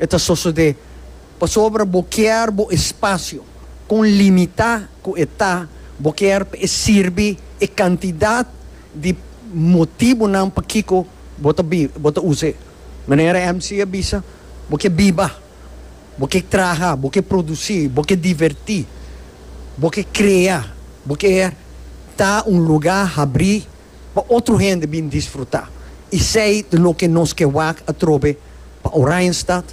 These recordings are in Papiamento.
E ta sosodé pasobra bo kier bo espasio. Kon limitá ku e ta, bo kier pa e sirbi e kantidat di motibunan pakiko bo ta biba, bo ta us'é. Manera MC a bisa, bo ke biba, bo ke traha, bo ke produsí, bo ke divertí, bo ke krea, bo kier ta un lugá habrí. pa otro hende bin disfruta isei ta loke nos ke wak atrobe pa Oranjestad,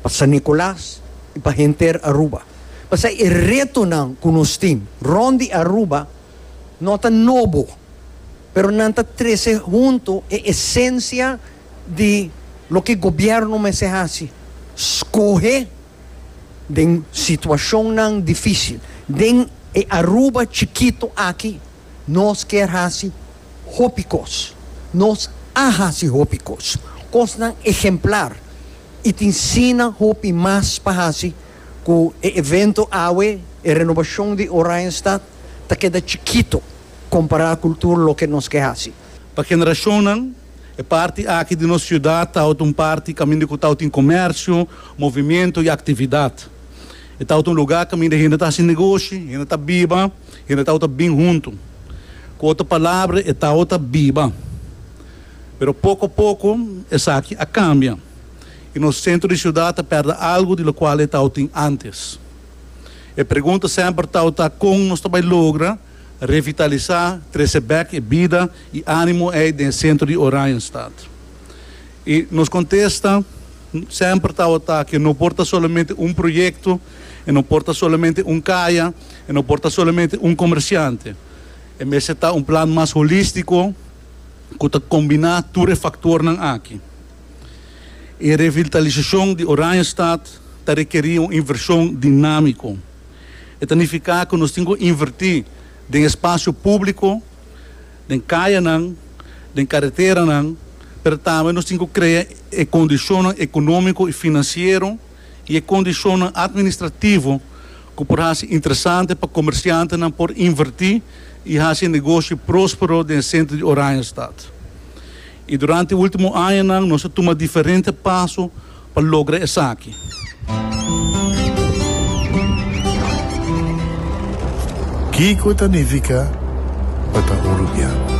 pa San Nicolas y pa henter Aruba. Pasai e retonan cu nos tin rond di Aruba no ta nobo, pero nan ta trece hunto e esencia di loke gobierno mester haci, scohe den situacionnan dificil den e Aruba chikito aki. Nos kier hasi hopi kos. Nos a hasi hopi kos, kosnan ehemplar, i tin sina hopi mas pa hasi ku e evento awe, e renobashon di Oranjestad, ta keda chikito kompará ku tur loke nos ke hasi. Pa generashonnan, e parti aki di nos siudat tawata un parti kaminda ku tawata tin komèrsio, movimentu i aktividat. E tawata un lugá kaminda hende ta hasi negoshi, hende ta biba Hende tau ta bin huntu. Ku otro palabra, e tau ta biba. Pero poko poko esaki a kambia i nos sentro di siudat ta pèrdè algu di lokual e tau tin ántes. E pregunta semper tau ta kon nos ta bai logra revitalisá, trese bèk e bida i ánimo ei den e sentro di Oranjestad. I nos kontesta semper tau ta ke no por ta solamente un proyekto, e no por ta solamente un kaya. E no por ta solamente un comerciante. E mester ta un plan mas holístico cu ta combina tur e factornan aki. E revitalisacion di Oranjestad ta requeri un inversion dinamico. E ta nifica cu nos tin cu inverti den e spacio publico, den cayanan, den carreteranan, pero tambe nos tin cu crea e condicionnan economico y financiero, y e condicionnan administrativo cu por haci interesante pa comerciantenan por inverti y haci negoshi prospero den e centro di Oranjestad. Y durante e ultimo añanan nos a tuma diferente paso pa logra esaki. Kico ta nifica pa ta un rubian?